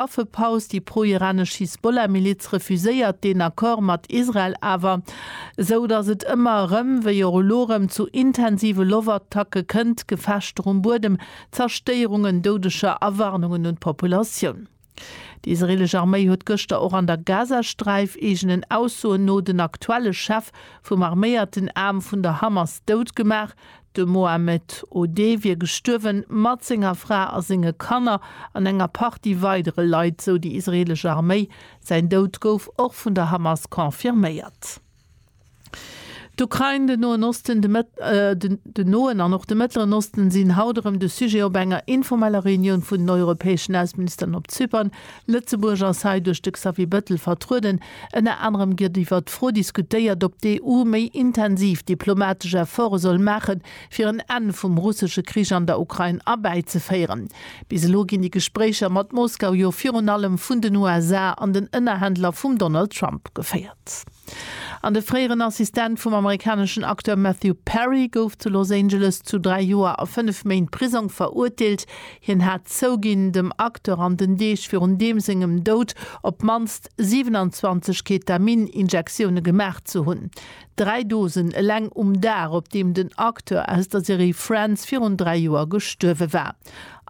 Affepaus, déi pro-iranesch Hisbollah-Miliz refuséiert deen Accord mat Israel awer, esou datt et ëmmer erëm, wéi och elo erëm, zu intensive Loftattacke kënnt, Gefechter um Buedem, Zerstéierungen, Doudeger a Warnungen un d'Populatioun. Déi israeelesch Arméi huet gëschter och an der Gazasträif, eegenen Aussoen no, den aktuelle Chef vum arméierten Aarm vun der Hamas dout gemaach, De Mohammed Odeh wier gestuerwen, mat senger Fra a senge Kanner an enger Partie weidere Leit, sou déi israeelesch Arméi. Säin Doud gouf och vun der Hamas confirméiert. D'Ukrain, den Noen Osten, den Noen an och de Mëttleren Osten sinn haut erëm de Sujet op enger informeller Reunioun vun den europäeschen Ausseministeren op Zypern. Lëtzebuerg ass hei duerch de Xavier Bettel vertrueden. Ënner anerem gëtt iwwert d'Fro diskutéiert, ob d'EU méi intensiv diplomatesch Efforte soll maachen, fir en Enn vum russesche Krich an der Ukrain erbäizeféieren. Bis elo ginn déi Gespréicher mat Moskau jo virun allem vun den USA an den Ënnerhändler vum Donald Trump geféiert. An de fréieren Assistent vum amerikaneschen Acteur Matthew Perry gouf zu Los Angeles zu dräi Joer a fënnef Méint Prisong verurteelt. Hien hat zouginn, dem Acteur an den Deeg virun deem sengem Doud op d'mannst 27 Ketamin-Injektioune gemaach ze hunn. Dräi Dosen eleng um Dag, op deem den Acteur aus der Serie Friends virun dräi Joer gestuerwe war.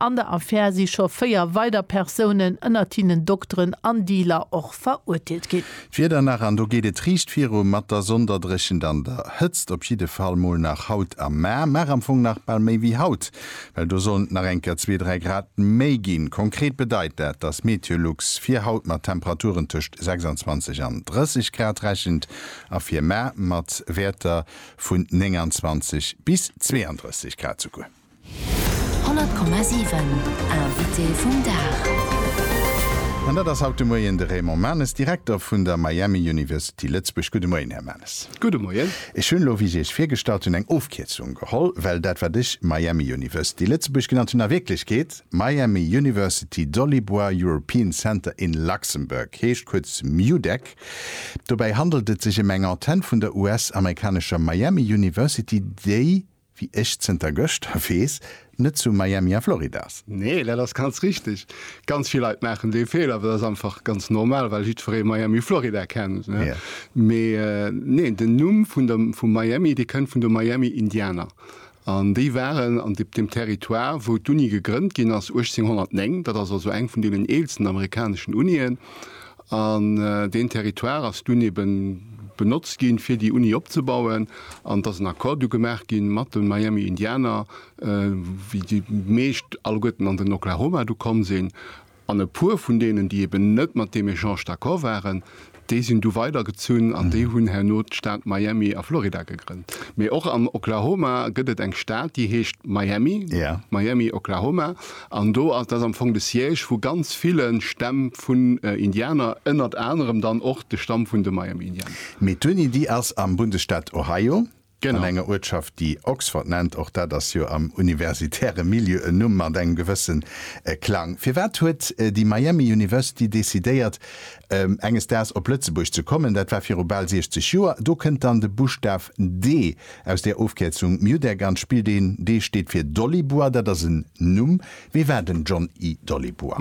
An der Affär si scho véier weider Persounen, ënnert hinnen Dokteren an Dealer, och verurteelt ginn. D'Wieder nach, an do geet et riicht viru mat der Sonderdréchent an der Hëtzt, op jidde Fall mol nach haut a mar, mar am Fong nach bal méi wéi haut. Well do sollen et nach eng Kéier zwee, dräi Grad méi ginn. Konkret bedeit dat, dass Meteolux fir haut mat Temperaturen tëscht 26 an 30 Grad rechent a fir mar mat Wäerter vun 29 bis 32 Grad souguer. 100,7 Invité vum Dag. An dat ass haut de Moien de Raymond Manes, Direkter vun der Miami University Lëtzebuerg. Gudde Moien, Här Manes. Gudde Moien. Ech hunn elo, wéi ech Iech virgestallt hunn, eng Ofkierzung geholl, well dat, wat ech Miami University Lëtzebuerg genannt hunn, a Wierklechkeet Miami University Dolibois European Center in Luxembourg heescht, kuerz MUDEC. Dobäi handelt et sech ëm eng Antenn vun der US-amerikanescher Miami University, déi, Wéi ech zënter gëschter weess, net zu Miami a Florida ass. Nee, dat ass ganz richteg. Ganz vill Leit maachen dee Feeler, well dat ass einfach ganz normal, well jiddweree Miami, Florida kennt. Mee neen, den Numm vu Miami, dee kënnt vun de Miami Indianer. An déi waren an deem Territoire, wou d'Uni gegrënnt ginn ass 1809. Dat ass also eng vun deenen eelsten amerikaneschen Unien. An deen Territoire ass dunn ebe benotzt ginn, fir déi Uni opzebauen. An et ass en Accord du gemaach gi mat de Miami Indianer, wéi déi meescht alleguerten an den Oklahoma du komm sinn. An e puer vun deenen, déi eben net mat deem Echange d'accord waren, déi sinn du weidergezunn an déi hunn herno d'Stad Miami a Florida gegrënnt. Mee och am Oklahoma gëtt et eng Stad, déi heescht Miami, Miami, Oklahoma. An do, dat ass am Fong de Siège vu ganz ville Stämm vun Indianer, ënnert anerem dann och de Stamm vun de Miami Indianer. Mee d'Uni, déi ass am Bundesstaat Ohio, an enger Uertschaft, déi Oxford nennt. Och dat ass jo am universitäre Milieu en Numm mat engem gewësse Klang. Firwat huet déi Miami University decidéiert, enges Daags op Lëtzebuerg ze kommen? Dat war viru bal 60 Joer. Do kënnt dann de Buschtaf D Aus der Ofkierzung Mjuddergan spillt een D steet fir Dollibua, dat ass en Numm. Wie war den John I. Dollibua?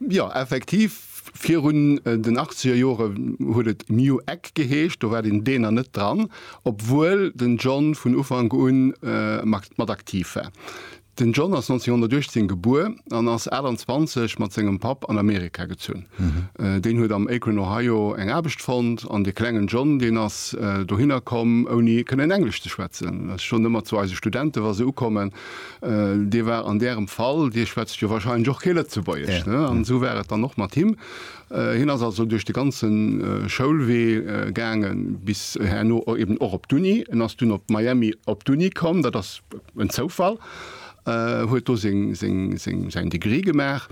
Jo, effektiv, virun den achtzeger Jore huet et Mju Egg geheescht, do war den D nach net dran, obwuel den John vun Ufank un mat aktiv war. Den John ass 1918 gebuer an ass 28 mat sengem Papp an Amerika gezunn. Deen huet am Akron, Ohio eng Aarbecht fonnt an de klengen John, deen ass dohinner komm ouni kënnen Englesch ze schwätzen. Ech soen ëmmer zu eise Studenten, wa se ukommen, Dir war an Ärem Fall, Dir schwätzt jo warscheinlech och kee Lëtzebuergesch, ne? An esou war et dann och mat him. Hien ass also duerch de ganze Schoulwee gaangen, bis herno eben och op d'Uni. En ass dunn op Miami op d'Uni komm, dat ass en Zoufall, huet do säin Degree gemaach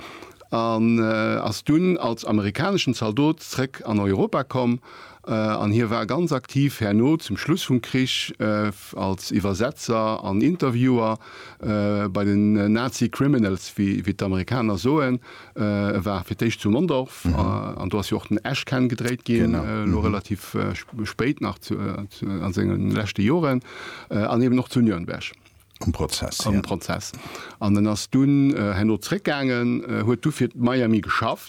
an ass dunn als amerikaneschen Zaldot zréck an Europa komm. An hie war ganz aktiv herno zum Schluss vum Krich als Iwwersetzer an Interviewer bei den Nazi Criminals, wéi d'Amerikaner soen. E war fir d'éischt zu Mondorf an do ass jo och den Esch kenn gedréit ginn, elo relativ spéit nach zu a senge leschte Joren, an eben och zu Nürnberg um Prozess um Prozess. An en ass dunn herno zréckgaangen, huet du fir d'Miami geschafft.